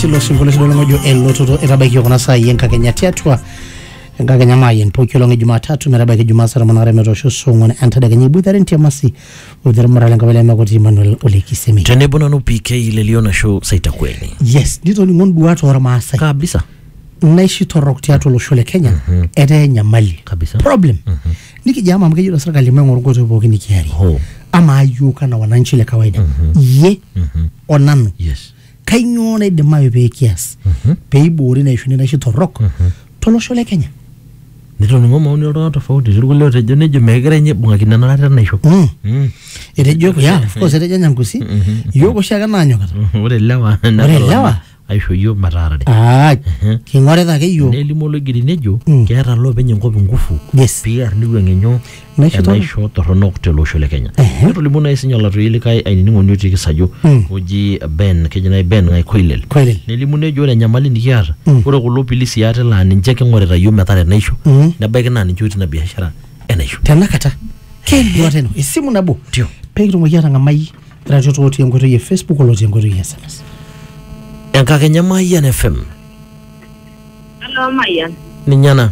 tilo sinkolio sidai olong ojo elototo etabaikio kuna saai enkakenya tiatua enkakenya maayen pooki olong e jumatatu metabaiki jumaa saa tomon aare metoosho saa ong'wan entadekenya iboitare entiamasi boitare murare enkabila emakoti Emmanuel Ole Kisemi tenebo nanu PK lelio nasho saitakweni yes nitoning'o nduat ormaasai kabisa naishi torrok tiatua olosho le Kenya etaa enyamali Kabisa. problem nikijo ama amu kejoito serkali maing'oru nkoitoi pooki nikiarie Ho. amaa yiok anaa wananchi le kawaida iyie onanu yes kainyoo naidimayu pee kias pee iboori ina ishuni naishi torrok tolosho le Kenya. Netoning'o maoni oltung'ana tofauti, etii irkulie ootejo nejo meegirai ninye aibung'akino ena kata enaisho. Mm. Mm. Etejo yeah, of course etejo Nyangusi iyiook oshiake naanyokita. Ore ilewa Ore ilewa? aisho iyiook metaarare. Ah, king'orita ake iyiook. Nelimu oloigeri nejo Mm. keeta loopeny enkop ingufu Yes. pee ear neiwuang'ie nyoo Naisho torrono. enaisho torronok tele osho le Kenya. Netolimuo nai sinye olatoi likae ainining'oni otii Kisajo Mm. oji Ben, keji nai Ben Ng'ai Koilel. Koilel. Nelimu nejo ore enyamali nikiata, Mm. ore kulo pilisi ate laa ninche king'orita yiok metaa enaisho, Mm. nebaiki naa ninche otii ina biashara enaisho. tenakata keduata ino esimu nabo Ndio. pekitumoki atang'amai iratiot otii enkoitoi e facebook olotii enkoitoi e sms Enkakenya Mayian FM. Hello, Mayan. Ninye ena.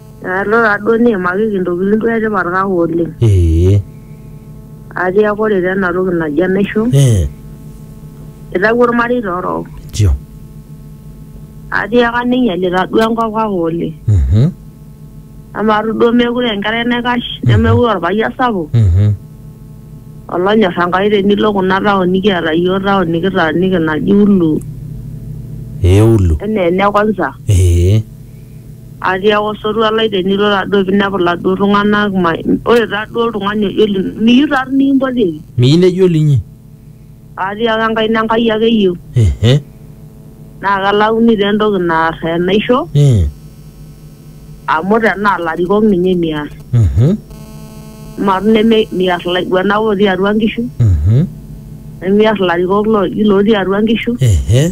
Alo taa duo niimakiki intokitin duo etipat kake oleng. Ee. Atiaka ore taa ena toki naji enaisho, Ee. itawuo ilmareita orok. Nchoo. Atiaka neinyalita duo enkop kake oleng. Mhm. Amaa tu duo meekure aa enkerai naikash nemeekure aa olpayian sapuk Mhm. olonyor Enkai tenilo kuna taon nikiata iyiook taon nikitaaniki naji Ulu Ee ulu. enaa ene kwanza. Ee. Atiaaka osotua lai tenilo taa duo pee inepu iladuo tung'ana, ore taa duo oltung'ani ojo linyi, miyieu taa toi nikimpotieki. Miyieu nejo linyi. Atiaaka enkaina Enkai ake eyieu. Ehe. Naa kelauni taa entoki naar enaisho. Ee. Amu tenaa ilarikok ninye miar. Uhum. Amaa toi neme miar ilaiguanak otii atua inkishu. Uhum. Nimiar ilarikok looji lotii atua inkishu. Ehe.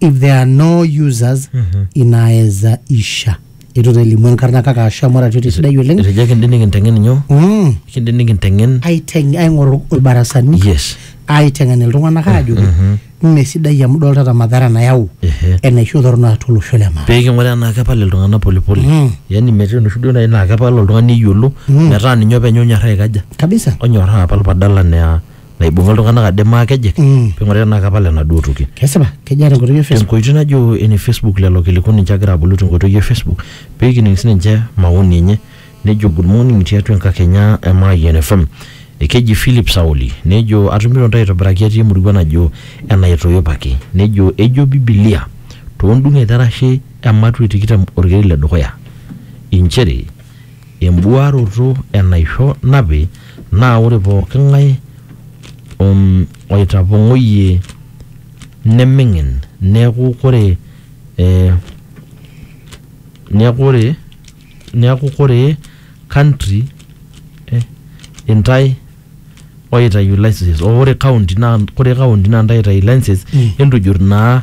if there are no users inaweza isha itu elimu enkarna kake asha amu arati sidai oleng etejo kindi nikinteng'en nyoo Mm, kindi nikinteng'en aiteng aing'oru ilbarasani yes aiteng'en iltung'anak aajoki mme sidai amu idoltata madhara nayau Ehe. enaisho torrono atua olosho le maa pee king'uraa enaa kepal iltung'anak polepole Mm. yaani metii enoshi duo nai naa kepal oltung'ani eyiolo metaa ninye openy onyorraa aikaja kabisa onyorraa apal badala naa naibung'a iltung'anak ade maakejek Mm. ping'ori tenaa kapal enaduo toki kesipa kejaa tenkoitoi e Facebook tenkoitoi najo ene Facebook lelo kiliku ninche agira abolu tenkoitoi e Facebook pekining sininche maoni enye nejo good morning tiatua enkakenya e Mayian FM ekeji Philip Sauli nejo atumito ntae aitobiraki atii emurua najo enaitoipaki nejo ejo bibilia tondung'et erashe ematua e tikitam orkeri le dukuya inchere Embuaroto enaisho napi naa ore pooki ng'ae om oitapong'oyie neming'in neaku kore eh, neaku ore neaku kore country eh, intae oitayu licenses oh ore county naa kore county naa intae oitayu licenses entujurr naa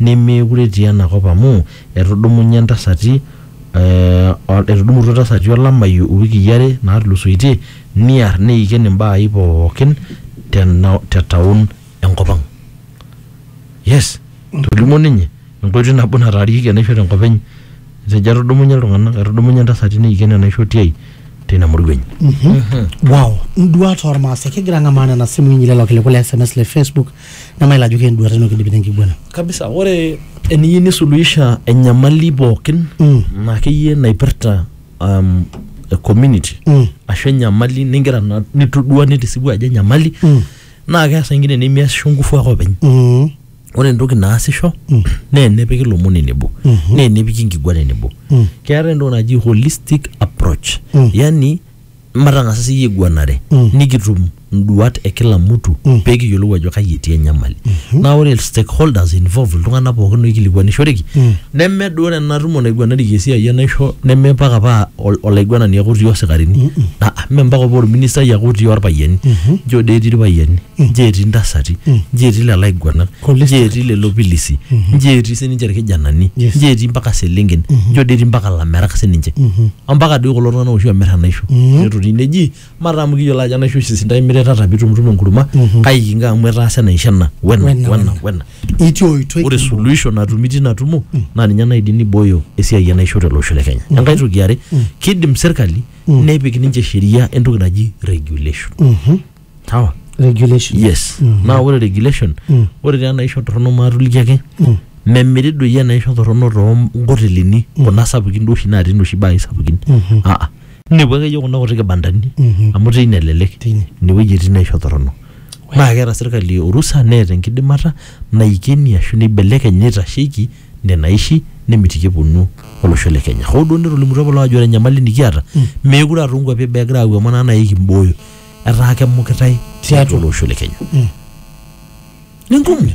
nemeekure etii ena kop amu etudumunye ntasati etudumutua ntasati olameyu iwikii are naatulusoitie niar neiken imbaai pookin te town enkop ang. Yes, etolimuo ninye enkoitoi nabo nataarieki enaisho tenkop enye. Etejo etudumunye iltung'anak, etudumunye ntasati neiken enaisho tiai teina murua enye. Wow. Induat ormaasai. Kigira ang'amaa nena simui inyi lelo kiliku le sms le facebook. nemayiolo ajo kenduata ino kidipi tenkiguana kabisa ore eniyieu nisuluhisha enyamali pookin Mm. na akeyie naipirta um, e community Mm. ashu enyamali ningira na- nitodua nitisipu ajo enyamali Mm. naa keasa ingine nemiasisho ngufu ake openy Mm. ore entoki naasisho Mm. naa enepiki lomon enebo Mhm. naa enepiki nkiguana enebo Mm. keetae entoki naji holistic approach Mm. yani matang'asa siyie aiguanare mm. nikitum nduat e kila mtu mm. pee kiyiolou ajo kai etii enyamali mm -hmm. naa ore stakeholders involve iltung'anak pookin oikilikuanishoreki mm. neme duo ena tumo naiguanareki esiai enaisho neme mpaka paa olaiguanani ake otii osikarini mm -mm. mme mpaka paa orministai ake otii orpayiani mm -hmm. njo dee etii irpayiani nji etii ntasati nji etii lelo aiguanak Kulis- nji etii lelo pilisi nji etii sininche irkijanani Yes. nji etii mpaka selenken njo dii etii mpaka lamerak sininche ompaka doi kulo tung'anak oshi omir enaisho netoni neji mataa amu kiyiolo ajo enaisho oshi sidai imiritata pitumtum enkurma kai kinko amu etaasa enaisho ena wena Wena, wena wena. wena itii oitoi ore suluhisho natumi tina tumo naa ninye naidim nibooyo esiai enaisho tele osho le kenya enkae toki yare kidim serkali nepik ninche sheria entoki naji regulation sawa regulation yes naa ore regulation Mm. ore taa enaisho torrono maatoliki ake Mm. memiri doi enaisho torrono toonkotelini kuna sapukin duo oshi natii noshi baai sapukin Mhm. aa inepu akeyie kuna kuti kibandani Mhm. amu teine elelek Teine. inewueji etii naisho torrono naa keeta sirkali orusa neeta enkidimata naikeni ashu neibelekeny neitasheiki nena aishi nemitiki eponu olosho le kenya hoo duo netolimutuo apa loo ajo ore enyamali nikiata meekure aa toonkuapi eboo egira aapuo amu enaa nai kimbooyo etaa kemukitae tiatua olosho le Kenya. Ni ngumu.